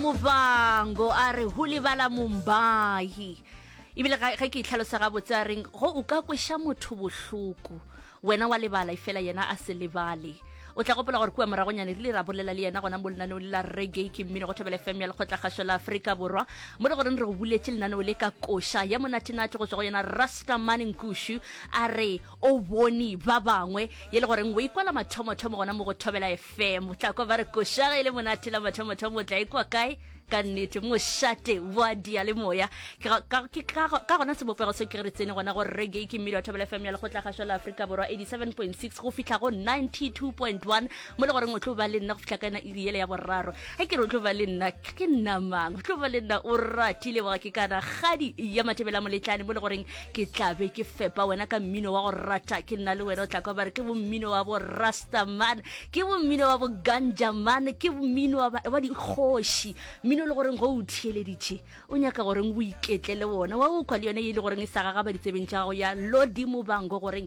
Muvhango a re ho lebala Mumbai. Ebile ga ge ke itlhalosa gabotse a reng go o ka kweša motho bohloko wena wa lebala efela yena a se lebale o tla gopola gore kua moragonyane rile ra bolela le yena gona mo lenaneong le la reggae ke mmino go thobela fm ya lekgotlakgašo la aforika borwa mo le goreng re go buletše lenaneo le ka koša ya monatenate go tswa go yena rastamane nkushu a re o bone ba bangwe ye le goreng o ikwala mathomothomo gona mo go thobela fm tla kwa ba re koša ge e le monate la mathomothomo o tla ikwa kae ka nnete mošate wa dialemoya Ke ga- ka ke ka go- ka gona sebopego se ke re tsene gona gore reggae ke mmele wa thobela fm ya lekgotla kgašwa la aforika borwa 87.6 go fitlha go 92.1 mo le goreng o tlo ba le nna go fitlha ka ena iri yele ya boraro ge ke re o tlo ba le nna ke nnamang o tlo ba le nna o ratile boga ke kana kgadi ya mathebela moletlane mo le goreng ke tla be ke fepa wena ka mmino wa go rata ke nna le wena o tla kwa bare ke bommino wa bo rastaman ke bommino wa bo ganjaman ke mmino wa ba- wa dikgoši mmino e le goreng go o theeleditše o nyaka goreng o iketle le wona wa o kwa le yone e le goreng e sa gagaba ditsebeng tša gago ya lodimo bango goreng